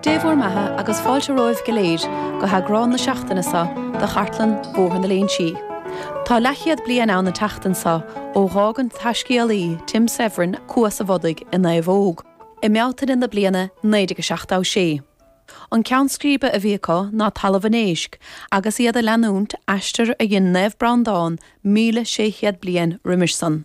Dé bhur mbeatha agus fáilte romhaibh go léir go heagrán na seachtaine seo de chartlann Bhóthar na Léinsí. Tá leathchéad bliain ann an tseachtain seo ó dh'fhág an taiscéalaí Tim Severin Cuas a' Bhodaigh i naomhóg, i mBealtaine na bliana 1976. An ceann scríbe a bhí acu ná Talamh an Éisc agus iad a leanúint aistear a dhein Naomh Breandán míle sé chéad bliain roimis san.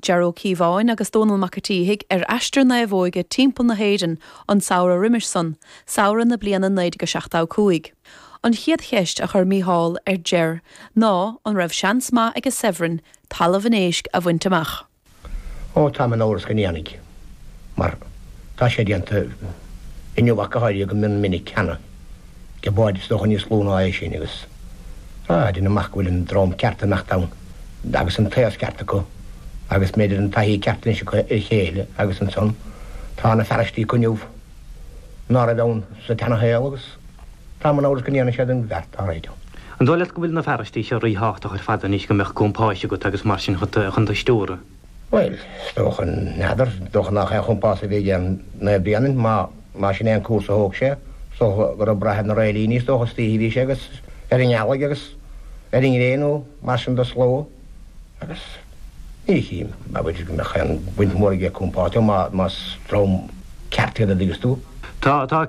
Ger Ó Cíobháin agus Dónall Mac a tSíthigh ar aistear naomhóige timpeall na hÉireann an samhradh roimis sun, samhradh na bliana 1975. An chéad cheist a chuir Mícheál ar Ger ná an raibh seans maith ag Severin, Talamh an Éisc, a bhaint amach. Ó, ó, táim in amhras go ndéanfaidh, mar tá sé déanta inniu ach go háirithe go mion minic cheana. le báid is dócha níos lú ná é sin agus a déanamh amach go bhfuil an dream ceart i ndán dóibh agus an t-aos ceart acu agus mb'fhéidir an taithí ceart anois acu ar a chéile agus ansan tá na fearaistí acu inniu ná raibh ann sa tseana-shaol agus táim in amhras go ndéanfaidh siad an bheart dá réir ann. An dóigh leat go bhfuil na fearaistí seo rí-thábhachtach ar fad anois go mbeadh compáis agat agus mar sin chun tú a stiúradh? Bhuel, is dócha, n'fheadar, is dócha nach aon chompás a bhí aige Naomh Breandán, má, má sin é an cúrsa a thóg sé. Is dócha go raibh ag braith ar na réilíní, is dócha, istoíche a bhí sé agus ar an ngealaigh agus ar an ngréin nó mar sin de, sórt agus, ní chím, b'fhéidir go mbeadh aon bhaint mhór aige le compás, má, más dream ceart iad an dtuigeann tú. Tá, tá.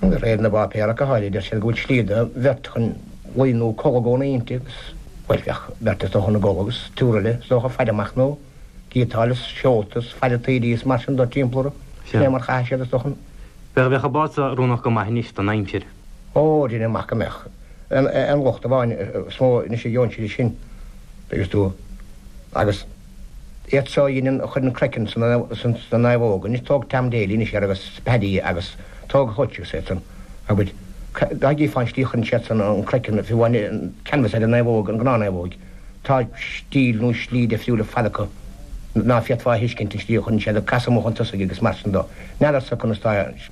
De réir na bpáipéar go háirithe, deir siad go bhfuil slí do bheirt chun luí nó codladh fén deic agus, bhuel, bheadh beirt is dócha ina gcodladh agus triúr eile is dócha ag faire amach nó gíotáil is seolta is ag faire taoidí is mar sin de timpeall orthu. Sin é mar chaithfidh siad, is dócha, an. Bheadh, bheadh an bád so oiriúnach go maith anois don aimsir. Ó, déanaim amach go mbeadh. An, an lucht amháin is mó anois a gheobhann siad é sin, an dtuigeann tú, agus. Iad seo a dheineann a chuireann croiceann sna naomhóga anois tóg Tam Daly anois iad agus Paddy agus tóg Hutch is iad san an dtuigeann tú fán tslí a chuireann siad san an croiceann fiú amháin an canvas ar an naomhóg an gnáth naomhóig tá stíl nó slí difriúil ar fad acu ná féadfá a thuiscint an tslí a chuireann siad ag casadh amuigh chun tosaigh agus mar sin de n'fheadar sa conas tá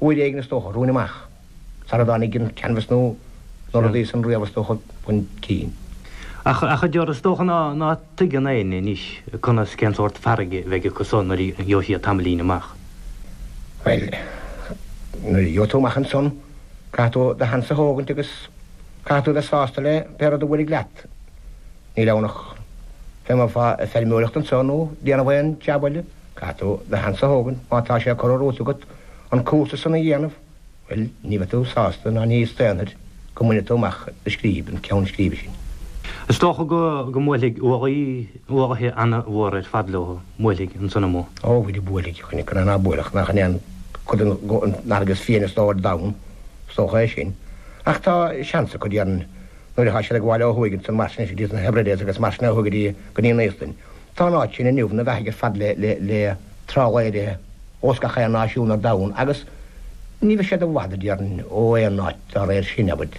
Uair éigin is dócha, romhainn amach, sara dtáinig an canvas nó na rudaí san riamh is dócha, chun cinn. Ach a deir, is dócha ná tuigeann éinne anois conas, cén sórt farraige a bheidh acu so nuair a gheobhaidh siad tamaillín amach. Bhuel, nuair a gheobhaidh tú amach ansan, caithfidh tú do sheans a thógaint agus caithfidh tú a bheith sásta le pé rud a bhuailfidh leat. Níl ann ach bheith i mbun feirmeoireachta anso nó déanamh aon jab eile. Caithfidh tú do sheans a thógaint má tá sé curtha romhat agat an cúrsa san a dhéanamh. Bhuel, ní bheidh tú sásta ná ní staonfair go mbainfidh tú amach do scríb, an ceann scríbe sin. Is dócha go mbuailfidh uaigh an-mhór ar fad leo, mbuailfidh, ansan amuigh. Ó, bhuailfeadh, bhuailfeadh, cad ina thaobh ná buailfeadh, nach in é an chuid den fharraige is fiaine is dócha ar domhan, is dócha é sin. Ach tá seans acu, déarfainn, nuair atá siad ag gabháil ó thuaidh ansan mar sin, idir na Hebrides agus mar sin ó thuaidh go dtí an Íoslainn, Tá an áit sin inniu ina bheathaidh ar fad le trálaeirí ós gach aon náisiún ar domhan agus ní bheidh siad i bhfad, a déarfainn, ó aon áit dá réir sin, agat.